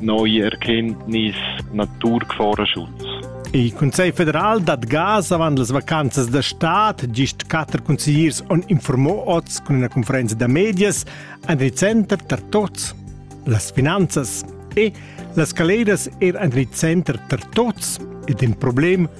Noi erkenntnis naturgefahrerschutz. Il Consiglio federal dat gas avant las vacanzas da stad. Gist quatter consigliers han informò oz cun una conferenza da medias an il center tar tots las finanzas e las caleras er an il center tar tots ed in problem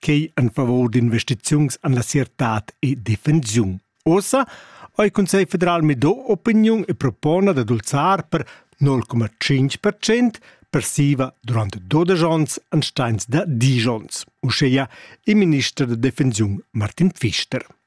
quei en favur d'investiziuns en la certad e defensiun. Ossa ha il Consiglio federal mido opiniun e propona da dulzar per 0,5% persiva durante 12 ans an steins da Dijons, uscheia il minister de defensiun Martin Pfister.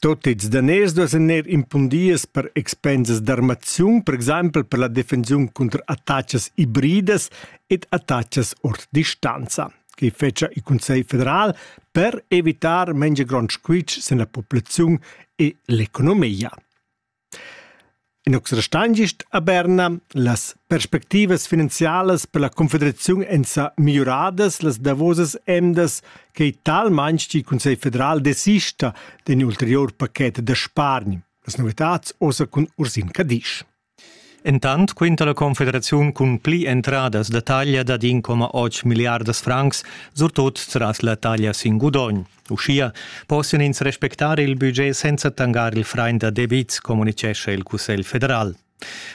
Tot ils daners duessen eir impundias per expensas d'armaziun, per exaimpel per la defensiun cunter attachas hibridas ed attachas ord distanza, che fetscha il Cussegl federal per evitar mengia grond squitsch sin la populaziun e l'economia. In ox restan gist a Berna. Las perspectivas finanzialas per la confederaziun èn sa migliuradas las davosas emdas, quai talmain ch'il Cussegl federal desista d'in ulterior paket da spargn. Las novitads ossa cun Ursin Cadisch. Entant quinta la Confederaziun cun pli entradas da taglia dad 1,8 milliardas francs, surtut tras la taglia sin gudogn. Uschia possian ins respectar il budget senza tangar il frain da debits, communitgescha il Cussegl federal.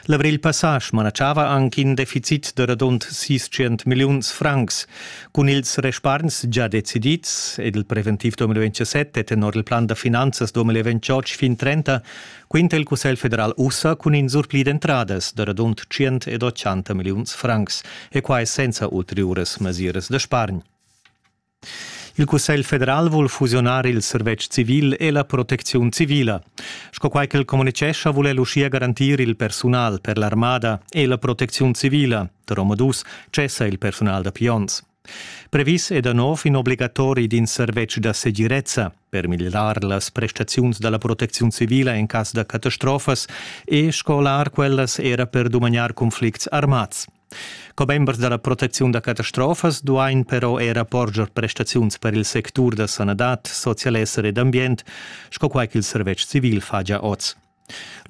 L'avril passà smanatschava anche in deficit da radund 600 milliuns francs. Cun ils respargns già decidids ed il preventiv 2027 e tenor il plan da finanzas 2028 fin 30 quinta il Cussegl federal ussa cun in surpli d'entradas da radund 180 milliuns francs e quai senza ulteriuras mesiras da spargn. Il Cussegl federal vul fusiunar il servetsch civil e la protecziun civila. Sco quai ch'el communitgescha, vul el uschia garantir il persunal per l'armada e la protecziun civila. Da omadus cessa il persunal da pions. Previs è da nov in obligatori d'in servetsch da segirezza per miglirar las prestaziuns da la protecziun civila en cas da catastrofas e scolar quellas era per dumagnar conflicts armads. Commembers da la protecziun da catastrofas duain però era porscher prestaziuns per il sectur da sanadad, socialesser ed ambient, sco quai ch'il servetsch civil fa gia oz.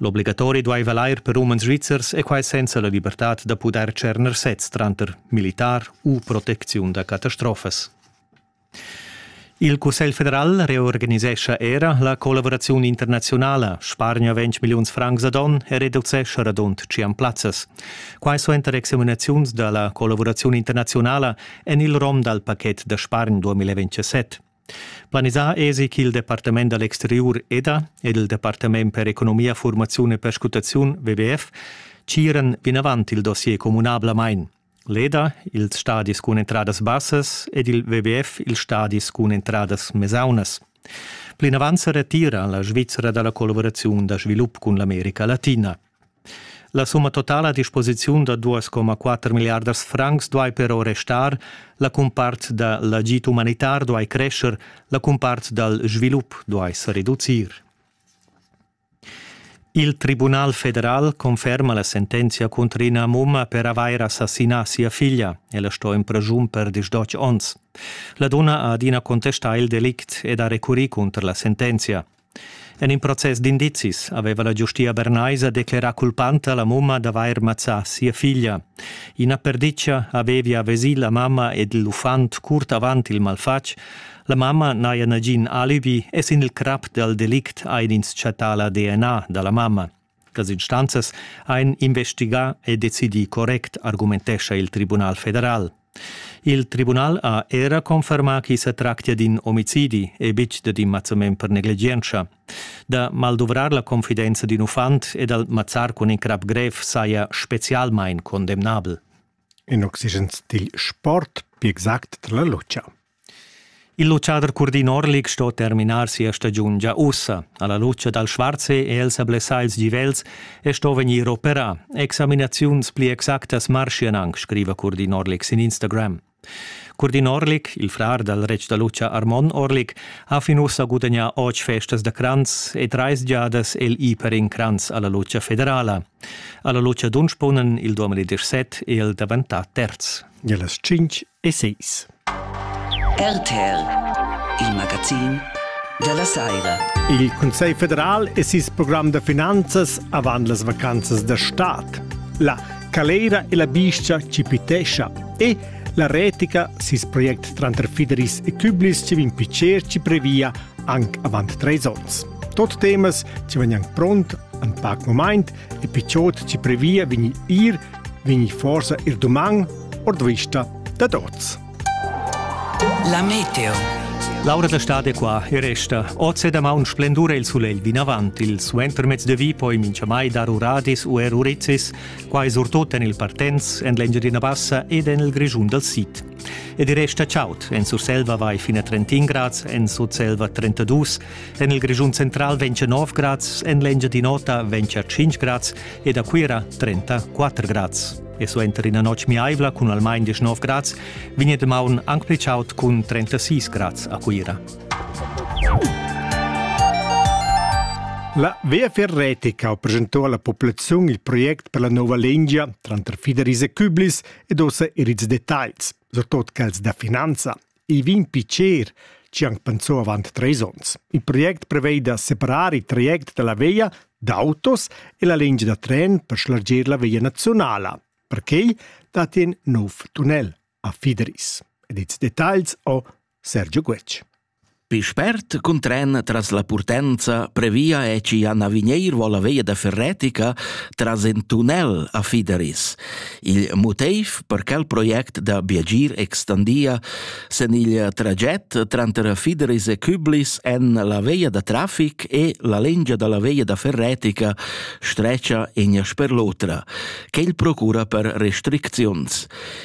L'obligatori duaiva l'air per umans svizzers e quai senza la libertad da pudair tscherner sez tranter militar u protecziun da catastrofas. Il Cussegl federal reorganisescha era la collavuraziun internaziunala, spargna 20 milliuns francs ad onn e reducescha radund 100 plazzas. Quai suenter examinaziuns da la collavuraziun internaziunala en il rom dal paket da spargn 2027. Planisà èsi ch'il Departament da l'exteriur EDA ed il Departament per economia, formaziun e perscrutaziun WWF tgiran vinavant il dossier communablamain. Leda ils stadis cun entradas bassas ed il WWF ils stadis cun entradas mesaunas. Plinavant sa retira la Svizzera da la collaboraziun da svilup cun l'America Latina. La summa totala a disposiziun da 2,4 miliardas francs duai però restar, la cumpart da l'agid umanitar duai crescer, la cumpart dal svilup duai sa reducir. Il tribunal federal conferma la sentenzia cunter ina mumma per avair assassinà sia figlia. Ella sto in preschun per disdotg onns. La donna ha adina contestà il delict ed ha recurrì cunter la sentenzia. En in process d'indizis aveva la giustia bernaisa declerà culpanta la mumma d'avair mazzà sia figlia. Ina perditga avevia vesì la mamma ed l'uffant curt avant il malfatg, La mamma n'haja nagin alibi e sin il crap dal delict hain ins chattà la DNA da la mamma. Las instanzas hain investigà e decidì correct, argumentescha il Tribunal federal. Il tribunal ha era confermà ch'i sa tractia d'in omicidi e betg dad in mazzament per negligientscha. Da malduvrar la confidenza d'in uffant e dal mazzar cun in crap grev saja spezialmain condemnabel. In oxygen dil sport, più exact dalla lucia. Il luchader Curdin Orlik sto terminar sia stagiun gia ussa. Alla luce dal Schwarze è el sa blessà ils givels e sto vegnir operà. Examinaziuns pli exactas marschian anc, scriva Curdin Orlik sin Instagram. Curdin Orlik, il frar dal retg da lucha Armon Orlik, ha fin ussa gudagnà otg festas da cranz e trais giadas el i per in cranz alla lucha federala. Alla Lucia Dunsponen il 2017 è el daventà terz. E las 5 e 6. RTR, il magazin della Saira. Il Consiglio federal e ses programm da finanzas avant las vacanzas da stat. La calera e la biscia ci pitescia e la retica, sis project tranter Fideris e Küblis ci vin picer ci previa anc avant treis onns. Tot temas ci vegnan pront en pac moment e picciot ci previa vegni ir vegni forsa ir doman ord vista da tots. La meteo. L'aura d'estate qua e resta. Oz e damaun splendura il sulegl vinavant. Il suentermezz de vi poi minchamai dar uradis u er uricis. Quai surtut en il Partenz, en l'Engiadina Bassa ed en il Grischun dal Sid. Ed il resta chaud. En Surselva vai fin a 31 grads, en Sutselva 32, en il Grischun central ventg 9 grads, en l'Engiadin'Ota ventg 5 grads ed a Cuira 34 grads. E suenter ina notg miaivla cun almain 19 grads vegn damaun anc pli chaud cun 36 grads a Cuira. La VFR Retica ha presentò alla popolazione il progetto per la nuova lingia tranter Fideris e Küblis ed ussa er ils detagls, surtut quels da finanza. I vegn picer, ci anc pensò avant treis onns. Il project prevei da separar il traject dalla via d'autos e la lingia da tren per schlargir la via nazionala. Perquei dat in nov tunnel a Fideris. Ed ils detagls ho Sergio Guetg. Pi spert cun tren tras la Purtenza previa e ci a Navineir vola veia da Ferretica tras in tunnel a Fideris. Il motiv per quel project da Biagir extandia sen il traget tranter Fideris e Küblis en la veia da traffic e la lengia dalla veia da Ferretica streccia in sper l'otra, che il procura per restricziuns.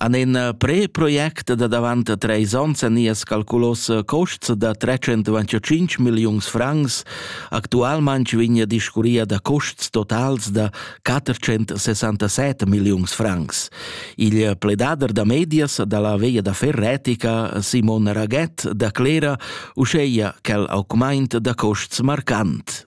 An in eh, pre-project da davant treis ons a nias calculos eh, costs da 325 milliuns francs actualment vigna discuria da costs totals da 467 milliuns francs. Il pledader da medias dalla veia da Ferretica, Simon Raget, da clera uscheia quel augment da costs marcant.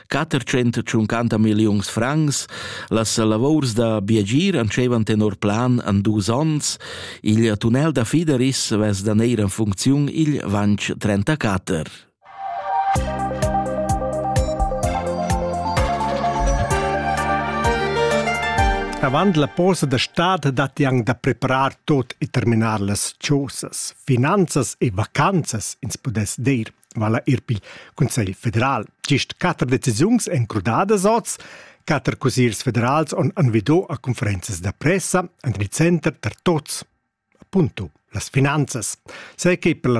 450 milliuns francs, las lavors da biagir antschevan tenor plan an dus onns, il tunnel da Fideris vess da neir en funcziun il vanch 34. Avant la posa da stad datti anc da preparar tot e terminar las chosas. Finanzas e vacanzas ins pudess dir. vala er pil Cunsegl federal. Gist quatter decisiuns èn crudadas oz. Quatter cusiers federals han envidò a conferenzas da pressa en il center tar tots. Appunto las finanzas. Sai che per la